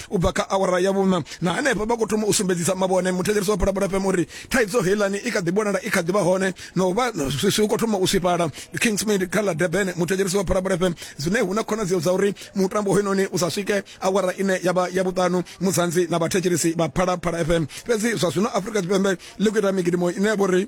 u bva kha awara ya vhuṋa na henefho vha khou thoma u sumbedzisa mavhone muthetshelesi wa phalaphala fm uri thaidzo heilani i kha ḓi vhonala i kha ḓi vha hone na u vha swiswi u khou thoma u swifhala kingsmid kha ḽa durban muthetshelesi wa phalaphala fm zwine hu na khonadzeo dza uri mutambo hoyunoni u sa swike awara ine ya vha ya vhuṱanu muzanzi na vhathetshelesi vha phalaphala fm fhedzi zwa zwino afrika tshipembe ḽi khou ita migidimo ine ya vha uri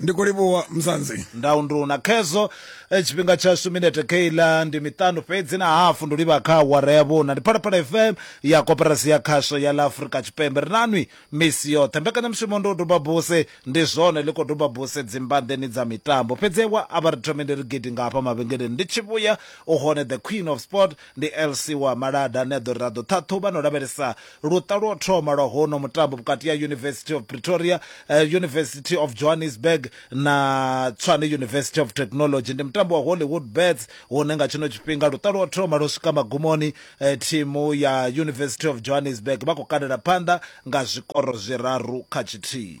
ndi khou livhuwa mzanzi ndau ndi una khezwo eh, tshifhinga tshashu minete keila ndi miṱanu fhedzi na hafu ndi livha kha awara ya vhuna ndi phalaphala fm ya koperasi ya khasho ya ḽa afurika tshipembe ri nanwi misi yoṱhe mbekanyamushumo ndi u duba buse ndi zwone ḽi khou duba buse dzimbanḓeni dza mitambo fhedzi wa a vha ri thome ndi ri gidi nga hafha mavhengeleni ndi tshi vhuya u hone the queen of sport ndi lc wa malada ane a ḓo ri ra ḓo ṱhaṱhuvha na u lavhelesa Luṱa lwa u thoma lwa hono mutambo vhukati ha University of Pretoria, uh, University of Johannesburg na Tshwane University of Technology ndi mutambo wa Hollywood Bets hune nga tshino tshifhinga luṱa lwa u thoma lwo swika magumoni. Uh, thimu ya University of Johannesburg vha khou kalela phanḓa nga zwikoro zwiraru kha tshithihi.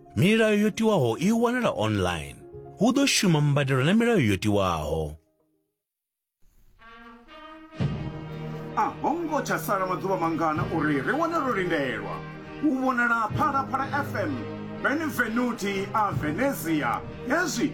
Milayo yo tiwaho i wanala online. Hu ḓo shuma mbadelo na milayo yo tiwaho. A ho ngo tsha sala maḓuvha mangana uri ri wane ro lindelwa u vhonala Phalaphala FM Benvenuti a Venezia hezwi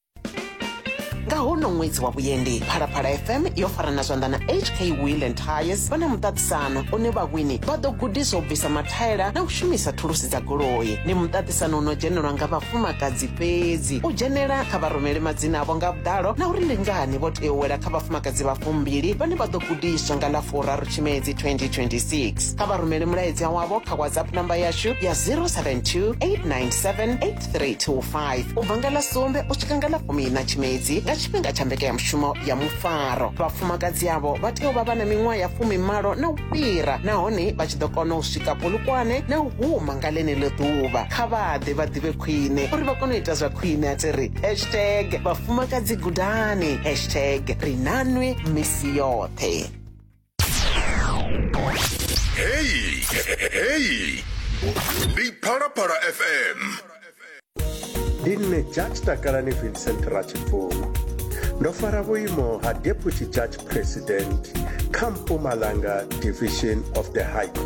nga hono ṅwedzi wa vhuendi phalaphala fm yo farana zwanḓa na hk wheel and tires vha na muṱaṱisano une vhawini vha ḓo gudiswa u bvisa mathaela na u shumisa thulusi dza goloi ndi muṱaṱisano u no dzhenelwa nga vhafumakadzi fhedzi u dzhenela kha vharumele madzina avho nga vhuḓalo na uri ndi ngani vho tea u wela kha vhafumakadzi vha fumbili vhane vha ḓo gudiswa nga ḽa furaru tshimedzi 2026 kha vharumele mulaedza wavho kha whatsapp namba yashu ya 072 897 3 to 5 u bva nga ḽa sumbe u swika nga ḽa fumina tshimedzi nga tshifhinga tsha mbekanyamushumo ya mufaro vhafumakadzi avho vha tea u vha vha na miṅwaha ya fumimalo na u fhira nahone vha tshi ḓo kona u swika polukwane na u huma nga ḽeneḽo ḓuvha kha vha ḓe vha ḓivhe khwine uri vha kone u ita zwa khwine a tsi ri hashtag vhafumakadzi gudani hashtag ri nanwi misi yoṱhe Hey, hey, Big Para Para FM. ndi nṋe judge takalani vincent rachibvuma ndo fara vhuimo ha deputy judge president kha mpumalanga division of the high court